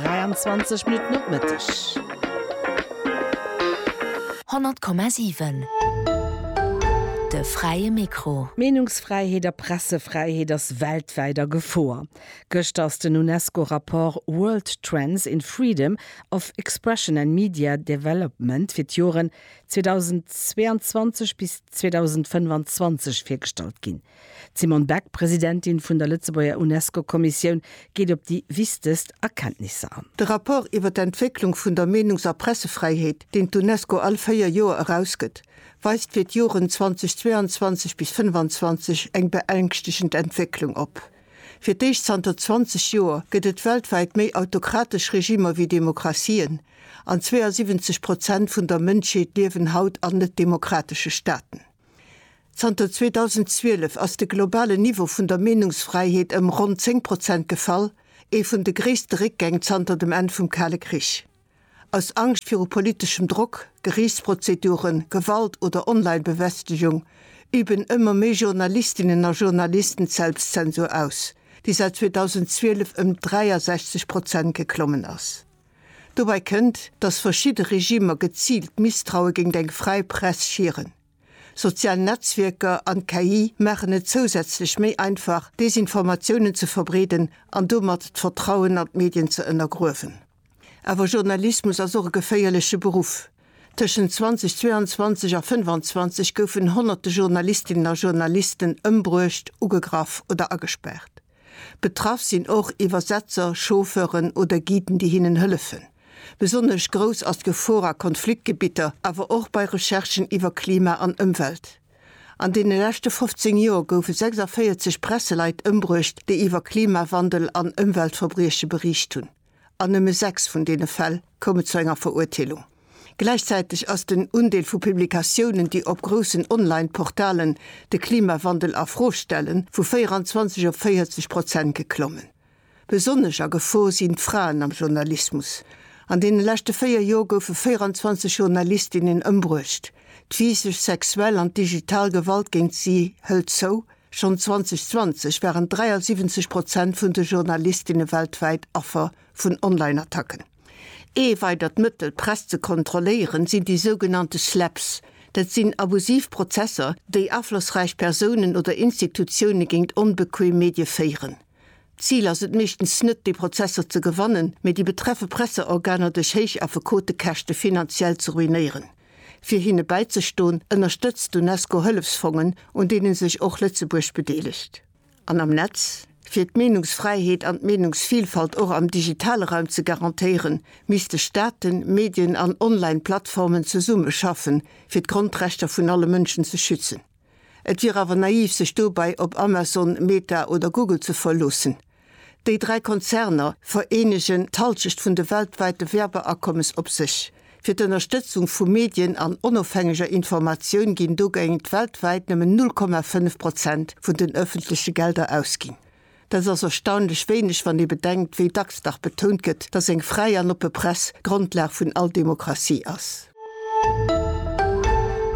23 Minutten op Mëtteg. 100,7 De fräie Mikro. Meenungsfräiheet a Pressefräiheet ass weltwäit a Gefor. Gëschter ass den UNESCO-Rapport World Trends in Freedom of Expression and Media Development fir d'Joren 2022 bis 2025 virgestallt ginn. D'Simone Beck, Presidentin vun der Lëtzebuerger UNESCO-Kommissioun, geet op déi wichtegst Erkenntnisser an. De Rapport iwwer d'Entwécklung vun der Meenungs a Pressefräiheet, deen d'UNESCO all véier Joer erausgëtt, weist fir d'Joren 2022 bis 25 eng beängschtegend Entwécklung op. Fir d'éischt zanter 20 Joer gëtt et weltwäit méi autokratesch Regimer wéi Demokratien, an 72 Prozent vun der Mënschheet liewen haut an net-demokratesche Staaten. Zanter 2012 ass de globalen Niveau vun der Meenungsfräiheet ëm ronn 10 Prozent gefall, ee vun de gréisste Réckgäng zanter dem Enn vum Kale Krich. Aus Angscht viru politeschem Drock, Geriichtsprozeduren, Gewalt oder Online-Bewästegung üben ëmmer méi Journalistinnen a Journalisten d'Selbstzensur aus, déi säit 2012 ëm 63 Prozent geklommen ass. Dobäi kënnt, datt verschidde Regimer geziilt d'Misstraue géingt eng fräi Press schieren. Sozial Netzwierker an d'KI maachen et zousätzlech méi einfach, Desinformatiounen ze verbreeden an domat d'Vertrauen an d'Medien ze ënnergruewen. Awer Journalismus ass och e geféierleche Beruff. Tëschent 2022 a 25 goufen honnerte Journalistinnen a Journalisten ëmbruecht, ugegraff oder agespaart. Betraff sinn och Iwwersetzer, Chauffeuren oder Guiden, déi hinnen hëllefen. Besonnesch grouss ass d'Gefor a Konfliktgebitter, awer och bei Recherchen iwwer Klima an Ëmwelt. An deene leschte 15 Joer goufe 46 Presseleit ëmbruecht, déi iwwer Klimawandel an Ëmweltverbrieche beriicht hunn. An nëmme sechs vun deene Fäll koume zu enger Verurteelung. Gläichzäiteg ass den Undeel vu Publikatiounen, déi op groussen Online-Portalen de Klimawandel a Fro stellen, vu 24 op 40 Prozent geklommen. Besonnesch a Gefor sinn d'Fraen am Journalismus. An deene leschte véier Jor goufe 24 Journalistinnen ëmbruecht. D'Physesch, sexuell an d'digital Gewalt géint si hëlt zou. Schonn 2020 waren 73 Prozent vun de Journalistinne weltwäit Affer vun Online-Attacken. Ee weidert Mëttel, d'Press ze kontrolléieren, sinn déi sougenannte Slaps. Dat sinn abusiv Prozesser, déi aflossräich Persounen oder Institutioune géint onbequeem Medie féieren. D'Zil ass et meeschtens net, déi Prozesser ze gewannen, mee déi betreffe Presseorganer duerch héich Affekotekäschte finanziell ze ruinéieren. Fir hinne bäizestoen, ënnerstëtzt d'Unesco Hëllefsfongen, un deene sech och Lëtzebuerg bedeelegt. An am Netz, Fir d'Meenungsfräiheet an d'Meenungsvilfalt och am digitale Raum ze garantéieren, misste Staaten, Medien an Online-Plattformen zesummeschaffen, fir d'Grondrechter vun alle Mënschen ze schützen. Et wier awer naiv sech dobäi op Amazon, Meta oder Google ze verloossen. Déi dräi Konzerner vereenegen d'Halschecht vun de weltwäite Werbeakommes op sech. Fir d'Ënnerstëtzung vu Medien an onofhängeger Informatioun ginn dogéint weltwäit nëmmen 0,5 Prozent vun den ëffentleche Gelder ausginn. Dat ass erstaunlech wéineg, wann ee bedenkt, wéi dacks dach betount gëtt, datt eng fräi an oppe Press d'Grondlag vun all Demokratie ass.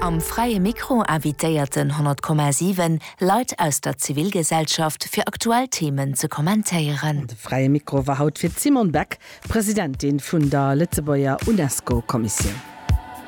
Am Fräie Mikro invitéiert den 100,7 Leit aus der Zivilgesellschaft, fir aktuell Themen ze kommentéieren. De Fräie Mikro war haut fir d'Simone Beck, Presidentin vun der Lëtzebuerger UNESCO-Kommissioun.